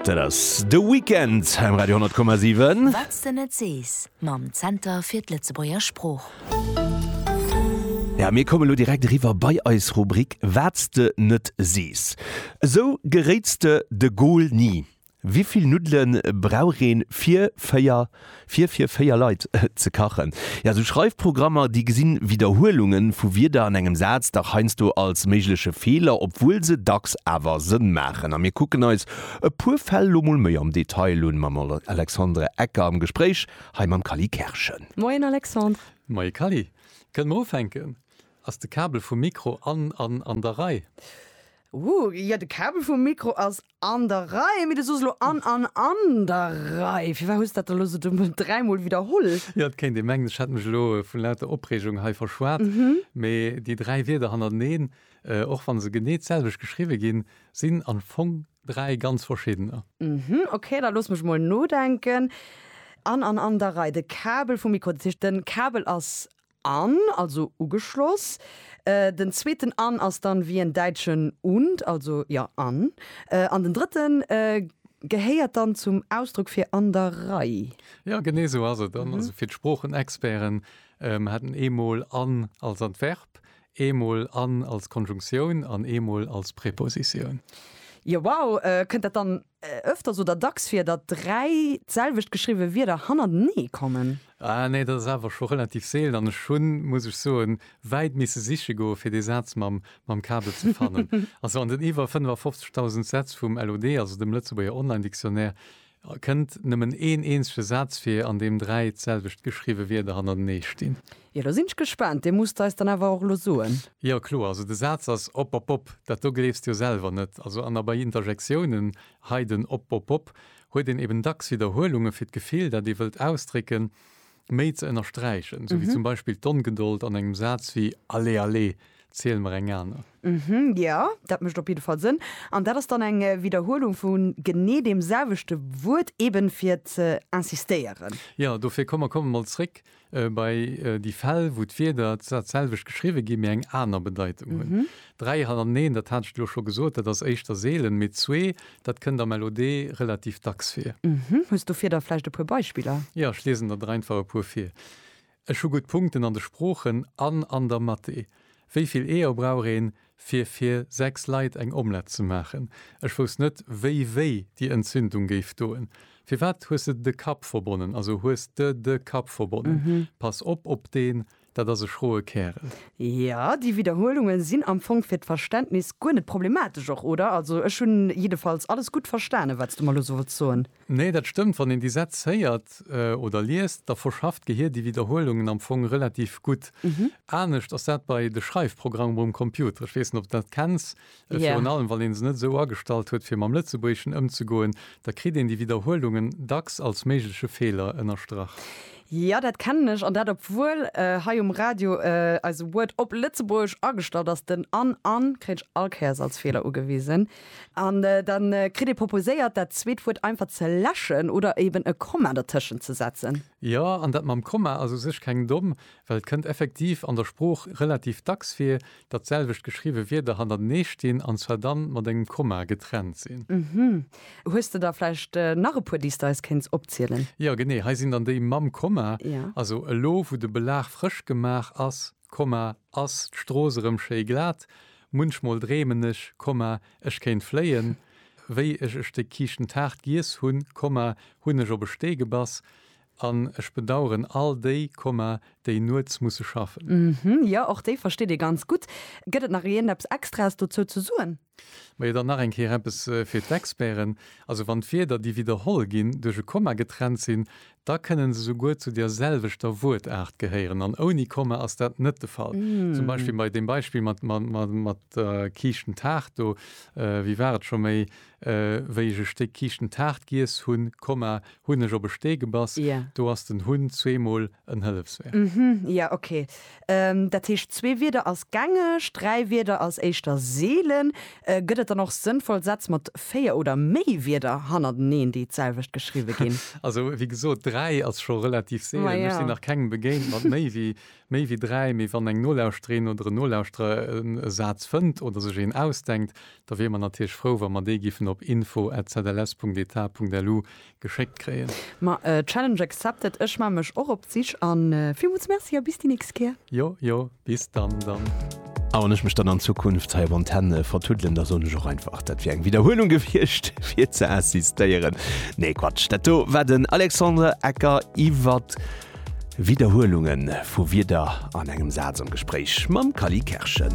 Dat ass The Weeknd um Radio 100,7. Wat s de net sees, mam Zenter fir d'Lëtzebuerger Sprooch. Jo, mir kommen elo direkt eriwwer bei eis Rubrik Wat s de net sees. Esou geréits de de Goal ni. Wivill Nuddele brauch een fir 4 Fir fir véier Leit ze kachen. Jo, esou Schreifprogrammer, déi gesinn Widderhuelunge vu Wierder an engem Saz dach heiansdo als méigleche Feeler, obwuel se dacks awer Sënn maachen. A mir kucken eis e puer Fäll lo mol méi am Detail un, mam Alexandre Ecker am Gespréich hei mam Kally Kerschen. Moien Alexandre. Moie Kally. Kënnen mer ufänken? Ass de Kabel vum Mikro an an an der Rei? Ooh, jo, de Kabel vum Mikro ass An der Rei, mee du sos elo an, an, an der Rei. Firwat hues dat elo esou dumm dräimol widderholl? Jo, et kéint ee mengen, ech hätt mech elo vu lauter Opreegung hei verschwat, mee déi dräi Wierder hannerteneen, och wa se genee d'selwecht geschriwwe ginn, sinn am Fong dräi ganz verschiddener. Ok, da looss mech mol nodenken. An, an, an der Rei. De Kabel vum Mikro, dat heescht den Kabel ass An, also ugeschloss. Den zweeten an ass dann wéi en däitschen und, also ja an. An den drëtten gehéiert dann zum Ausdruck fir an der Rei. Jo, genee esou ass et. An, also fir d'Sproochenexperten, mer hätten eemol an als Adverb, eemol an als Konjunktioun an eemol als Prepositioun. Jo, wow. Kënnt dat dann Öfters oder dacks vir, datt dräi d'selwecht geschriwwe Wierder hannertenee kommen? Ah nee, dat ass awer scho relativ seelen an ech hunn, muss ech soen, wäit misse siche goe fir dee Saz mam Kabel ze fannen. Also an den iwwer 55.000 Sätz vum LOD, also dem Lëtzebuerger Online Dictionnaire, kënnt nëmmen een eenzege Saz vir, an deem dräi d'selwecht geschriwwe Wierder hannertenee stinn. Jo, do sinn ech gespaant. Dir musst eis dann awer och elo soen. Jo, kloer. Also de Saz ass opopop. Dat do gleefs de jo selwer net. Also an a bei Interjektiounen, hei den opopop, huet een eben dacks Widderhuelunge fir d'Gefill, dat ee wëllt ausdrécken, méi ze ënnersträichen. Sou wéi zum Beispill d'Ongeduld an engem Saz wéi Allez, allez, ziel mer eng aner. Jo, dat mécht op jidde Fall Sënn. An dat ass dann eng Widderhuelung vu genee deem selwechte Wuert, eben fir ze insistéieren. Jo, dofir, komm mer kommen emol zréck Bei déi Fäll, wou d'Wierder dat selwecht geschriwwe ginn, mee eng aner Bedeitung hunn. Dräi hannerteneen, dat hat ech elo scho gesot, dat ass éischter seelen, mee zwee, dat kënnt a Melodee relativ dacks vir. Hues dofir da vläicht e puer Beispiller? Jo, ech liesen der der einfach e puer vir. Ech hu gutt Punkten an de Sproochen an an der Mathé. Wéi vill Eeër brauch een, fir fir 6 Leit eng Omlett ze maachen. Ech wousst net wéi wéi déi Entzündung géif doen. Firwat hues de de Kapp verbonnen? Also hues de de Kapp verbonnen? Pass op op deen, dat ass e schroe Kärel. Jo, déi Widderhuelungen sinn am Fong fir d'Verständnis guer net problematesch och, oder? Also ech hunn jiddefalls alles gutt verstanen, wat s du mer elo sollts soen. Nee, dat stëmmt. Wann een déi Sätz héiert oder liest, da verschafft d'Gehir déi Widderhuelungen am Fong relativ gutt. Anescht ass dat bei de Schreifprogrammer um Computer. Ech weess net, ob de dat kenns. Virun allem, wann ee se net esou agestallt huet, fir mam Lëtzebuergeschen ëmzegoen, da kritt een déi Widderhuelungen dacks als méigleche Feeler ënnerstrach. Jo, dat kennen ech. An dat obwuel hei um Radio eise Word op Lëtzebuergesch agestallt ass. Den an an kritt ech all Kéiers als Feeler ugewisen. An da kritt ee proposéiert, dat zweet Wuert einfach ze läschen oder eben e Komma dertëschent ze setzen. Jo, an dat mam Komma ass u sech keng domm, well et kënnt effektiv an der Sprooch relativ dacks vir, datt d'selwecht geschriwwe Wierder hannertenee stinn, an zwar dann mat engem Komma getrennt sinn. Uhmm. Hues de da vläicht nach e puer, déi s de eis kéints opzielen? Jo, genee. Hei sinn dann déi mam Komma. Jo. Also, elo wou de Belag frësch gemaach ass. Komma, Ass d'Strooss erëm schéi glat? Munchmol dreemen ech, Komma, ech kéint fléien. Wéi ech e Stéck Kiischentaart giess hunn, Komma, hunn ech op e Stee gebass. An ech bedaueren all déi, Komma, déi nuets musse schaffen. Ëmh, jo, och déi versteet ee ganz gutt. Gëtt et nach iergendeppes Extraes dozou ze soen? Majo dann nach eng Kéier eppes fir d'Experten, Also wann d'Wierder, déi widderholl ginn, duerch e Komma getrennt sinn, da kënnen se souguer zu der selwechter Wuertaart gehéieren, an ouni Komma ass dat net de Fall. Zum Beispill bei deem Beispill mat der kiischten Taart do, Wie war et scho méi, wéi ech e Stéck kiischten Taart giess hunn, Komma, hunn ech op e Stee gebass? Do ass den hunn zweemol en Hëllefsverb. Hm, jo, okay. Dat heescht, zwee Wierder ass gängeg, dräi Wierder ass éischter seelen. Gëtt et dann och sënnvoll Sätz mat véier oder méi Wierder hannerteneen, déi d'selwecht geschriwwe ginn? Also, wéi gesot, dräi ass scho relativ seelen. Ech sinn nach kengem begéint mat méi wéi méi wéi dräi. Mee wann eng Nolauschterin oder en Nolauschterer e Saz fënnt oder sech een ausdenkt, da wiere mer natierlech frou, wa mer dee giffen op info at zls.eta.lu geschéckt kréien. Ma Challenge accepted, ech maan mech och op d'Sich an villmools Merci a bis déi nächst Kéier. Jo jo bis dann dann. A wann ech mech dann an Zukunft hei op Antenne vertuddelen, da soen ech och einfach, dat wier eng Widderhuelung gewiescht fir ze insistéieren. Nee Quatsch, dat do war den Alexandre Ecker iwwer Widderhuelunge vu Wierder an engem Saz am Gespréich mam Kally Kerschen.